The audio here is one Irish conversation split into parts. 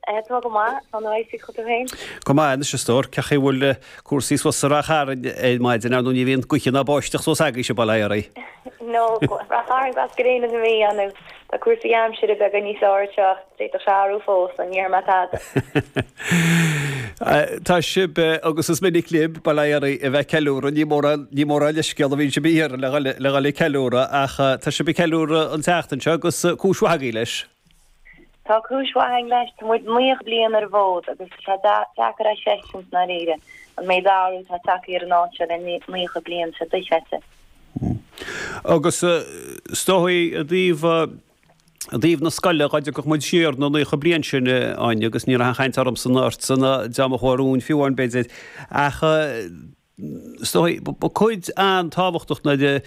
Tá go maith. Tá na raidhfil acu féin. Go maith anois, a stór. Cén chaoi a bhfuil cúrsaí suas sa Ráth Chairn ar maidin, ar ndóigh ní bhíonn gaoth ná báisteach suas agaibhse, bail ó Dhia oraibh? Nó Ráth Chairn glas gréine na Mí, an é? Tá cúrsaí aimsire beagán níos fearr anseo, d'fhéadfadh sé athrú fós, ach ní déarfaidh mé tada. Tá sibh, agus is minic libh, bail ó Dhia oraibh, a bheith ag ceiliúradh, ní mórán, ní mórán leithscéal a bhíonn sibh a iarraidh le dhul ag ceiliúradh, ach tá sibh ag ceiliúradh an tseachtain seo agus cúis mhaith agaibh leis. Tá cúis mhaith againn leis, tá muid naocha bliain ar an bhfód agus tá sé deacair a thuiscint i ndáiríre an méid athrú atá tagtha ar an áit seo le naocha bliain, tá sé dochreidte. Agus is dóigh i dtaobh, i dtaobh na scoile, dhá dtiocfadh muid siar na naocha bliain sin, Áine, agus ní raibh aon chaint ormsa ná ortsa ná deá mo chomhair-úin fiú amháin b'fhéidir, ach, is dóigh, ba chuid an-tábhachtach nuair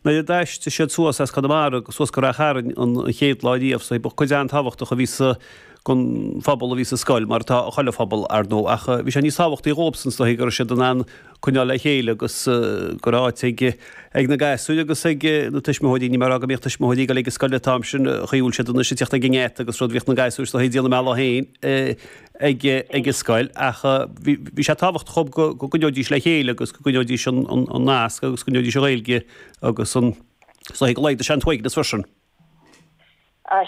a d'aistrigh siad suas as Conamara suas go Ráth Chairn an chéad lá riamh, is dóigh, ba chuid an-tábhachtach a bhí sa den phobal a bhí sa scoil, mar atá ag chuile phobal, ar ndóigh, ach bhí sé níos tábhachtaí dhóibhsan, is dóigh, go raibh siad in ann coinneáil le chéile agus go raibh áit ag na gasúir agus ag na tuismitheoirí, níl mé ag rá go mbíodh tuismitheoirí go léir ag an scoil an t-am sin, an chaoi a bhfuil siad anois ag tíocht ag an ngeata agus rud, bhíodh na gasúir, is dóigh, ag déanamh a mbealach féin. ag an scoil ach bhí sé tábhachtach dhóibh go gcoinneoidís le chéile agus go gcoinneoidís an nasc agus go gcoinneoidís an Ghaeilge agus is dóigh go laghdódh sé an t-uaigneas freisin.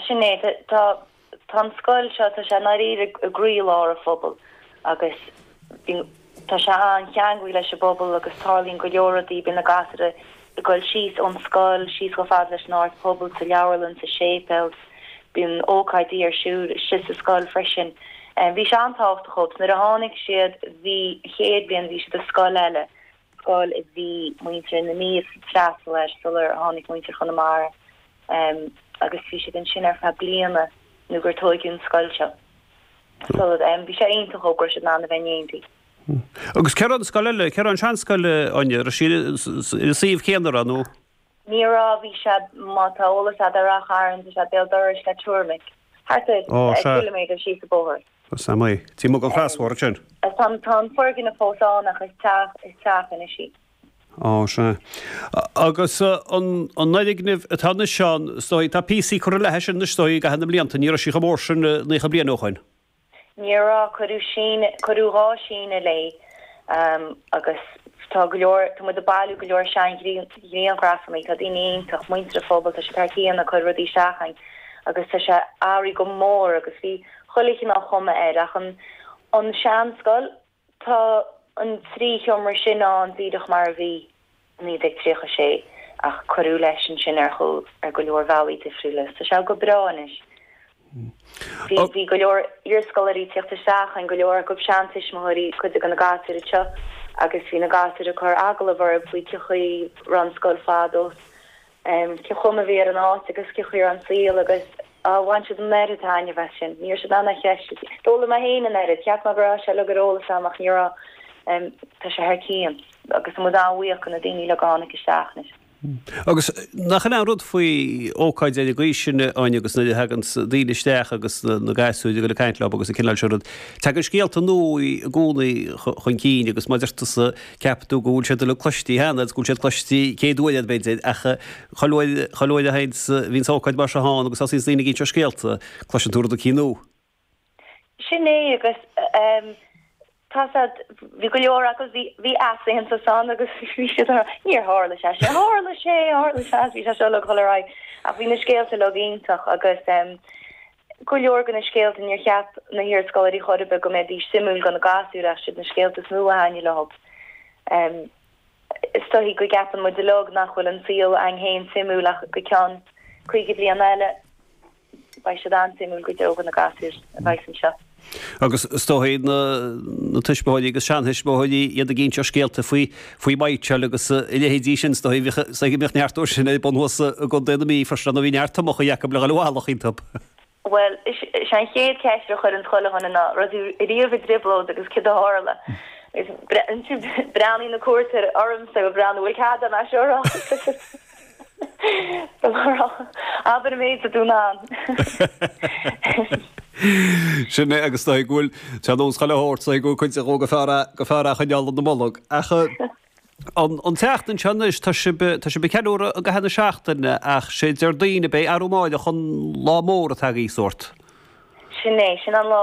Sin é, tá an scoil seo, tá sé i ndáiríre i gcroílár an phobail agus bíonn Tá sé an-cheangailte leis an bpobal agus tarlaíonn go leor rudaí, bíonn na gasúir ag goil síos ón scoil, síos chomh fada leis an Áras Pobail, sa leabharlann, sa séipéal, bíonn ócáidí ar siúl istigh sa scoil freisin. Bhí sé an-tábhachtach dhóibh. Nuair a tháinig siad, bhí, an chéad bhliain, bhí siad i scoil eile, scoil a bhí muintir na Mí ag freastal air sular tháinig muintir Chonamara, agus bhí siad ansin ar feadh bliana nó gur tóigeadh an scoil seo. So, em. Bhí sé iontach go raibh siad in ann a bheith in éineacht. Hm. Agus céard é an scoil eile, cá raibh an seanscoil, eh, Áine, an raibh sí sa suíomh céanna ar aon nós? Ní raibh, bhí sé, má tá eolas agat ar Ráth Chairn, tá sé béal dorais le Turmec, thart ar Ó, eh, sea. ciliméadar síos an bóthar. Tá a fhios agam, aye. Timpeall an chrosbhóthar sin. Tá an, tá an foirgneamh fós ann ach is teach, is teach anois í. Ó, sea. Agus an foirgneamh atá anois ann, is dóigh, tá píosaí curtha léi sin anois, is dóigh, i gcaitheamh na mblianta. Ní raibh sí chomh mór sin naocha bliain ó shoin. Ní raibh. Cuireadh síneadh, cuireadh dhá shíneadh léi agus tá go leor, tá muid ag bailiú go leor sean-ghrianghrafannaí, tá daoine iontach, muintir an phobail, tá siad thar cionn ag cur rudaí isteach againn agus tá sé athraithe go mór agus bhí chuile chineál cuma air ach an sean-scoil, Tá an trí sheomra sin ann díreach mar a bhí i 1936 ach cuireadh leis ansin ar go leor bhealaí difriúla. Tá sé go breá anois. Bhí go leor iarscoláirí ag tíocht isteach ann, go leor acu seantuismitheoirí cuid de na gasúir anseo agus bhí na gasúir ag cur agallamh orthu faoi cén chaoi a raibh an scoil fadó is cén chuma a bhí ar an áit agus cén chuma ar an saol agus bhain siad an oiread taitneamh as sin. Ní raibh siad in ann é a chreistiúint. D'fhoghlaim mé féin an oiread. Cheap mé go raibh sé uilig ar eolas agam ach ní raibh. Tá sé thar cionn agus tá muid an-bhuíoch de na daoine uilig a tháinig isteach anois. Agus nach in é an rud faoi ócáidí ar an gcaoi sin, Áine, agus nuair a thaganns daoine isteach agus na gasúir ag dul ag caint leo agus an cineál sin rud. Tagann scéalta nua i gcónaí chun cinn agus mar a deir tusa, Ceapann tú go bhfuil siad uilig cloistí cheana, agus go bhfuil siad cloistí céad uair agat, b'fhéidir, ach chuile uair, chuile uair a thaganns, bhíonns ócáid mar seo ann, agus thosaíonns daoine ag inse scéalta, cloiseann tú rud éicínt nua. Sin é, agus tá a fhios agat, bhí go leor acu, bhí, bhí easaontas ann, agus bhí siad a rá, níor tharla sé sin, tharla sé, tharla sé, bhí sé seo uilig ag dul ar aghaidh, ach bhí na scéalta uilig iontach, agus. go leor de na scéalta, níor cheap na hiarscoláirí chor ar bith go mbeidís suimiúil do na gasúir, ach siad na scéalta is mó a thaitnigh leo. Is dóichí go gceapann muid uilig nach bhfuil an saol againn féin suimiúil ach go ceann caoga bliain eile beidh siad an-suimiúil go deo do na gasúir a bheas anseo. Agus is dóichí na tuismitheoirí agus seantuismitheoirí iad ag inse scéalta faoi mitseáil agus a leithéidí sin, is dóichí go mbíodh neart dó sin ar bun thuas i gContae na Mí, freisin, nó bhí neart tomachaí acu le dhul i bhfolach iontu. Bhuel, is é an chéad cheist a chuireann chuile dhuine ná, raibh tú riamh i dtrioblóid agus céard a tharla? Agus ansin breathnaíonn na cuairteoirí ormsa ag breathnú, bhuel, cad é an aisearán? Abair an méid a dún ann. Sin é agus is dóigh go bhfuil ar nós chuile shórt is dóigh go bhfuil cuid dhó gur fearr gur fearr a choinneáil ina mbolg. Ach an an tseachtain seo anois tá sibh tá sibh ag ceiliúradh i gcaitheamh na seachtaine ach sé Déardaoin ab ea arú amáireach an lá mór atá agaibh sórt. Sin é, sin an lá